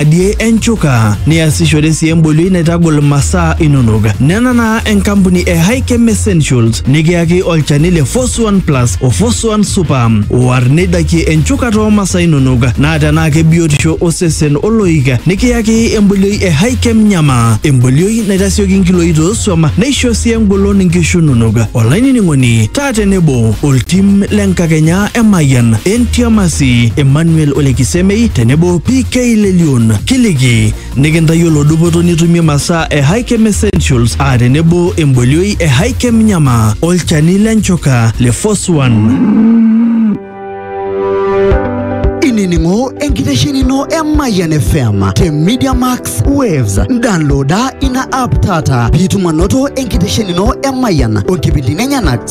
adie enchuka niasishore sii embolioi naitagol masaa inonok nena naa enkampuni e Hikem Essentials nikiyaki olchani le Foswan Plus o Foswan Super oar neidakie enchuka too masaa inonok naa tenaa kebiotisho osesen oloik nikiyaki embolioi e Hikem Nyama embolioi naitasioki nkiloi tooswam neisho sii engolon nkishu inonok olainining'oni taa tenebo oltim le nkakenya Emayian, Entiamasi, Emmanuel Ole Kisemei tenebo PK Lelion. Kiliki nikintayiolo dupoto nitumie masaa e Hikem Essentials aa tenebo embolioi e Hikem Nyama, olchani le nchoka le Foswan. inining'o enkitesheni ino e Mayian FM te Media Max Waves. Downloada ina app taata piitum anoto enkitesheni ino e Mayian o nkipindini enyenak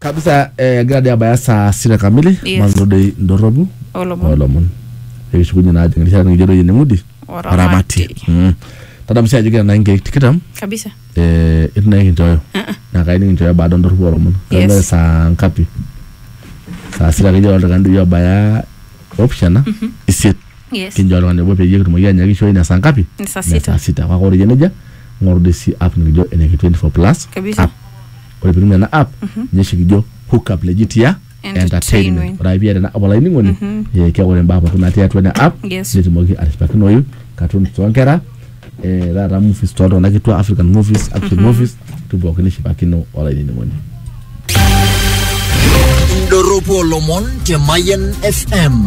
kabisa eh, egira dii abaya saa sita kamili Yes. maanoto dei ndorropu Olomon. olomon ekishukunye naa ajing erishata nikijo doi eneng'udi Oramati. Mm. tadamu sii ajo kira naa inkeek tikitam kabisa eh, itu naa kinchooyo naa kayieu nikinchooyo baada ondorropu olomon Yes. Kebaya saa ngapi saa sita akeyie oltung'ani doi obaya opishana isiet Yes. kinjo oltung'ani obo peyie kitumoki anyakishoyu ina saa ngapi Ni saa Ina sita. saa sita kake ore eyia nejia ng'oru doi si app nikijo eneki 24 plus Kabisa. app ore pitum ena app ninye oshi kijo hook up legit ya entertainment Entertainment. ore ake piata ena app olainining'oni eh, keeku ore imbaa pookin natii atua ena app Yes. nitumoki atishipakinoyu cartoons toonkera eh, taata movies toltung'anak kitua african movies action movies tu pookin nishipakino olainining'oni Indorropu olomon te Mayan FM.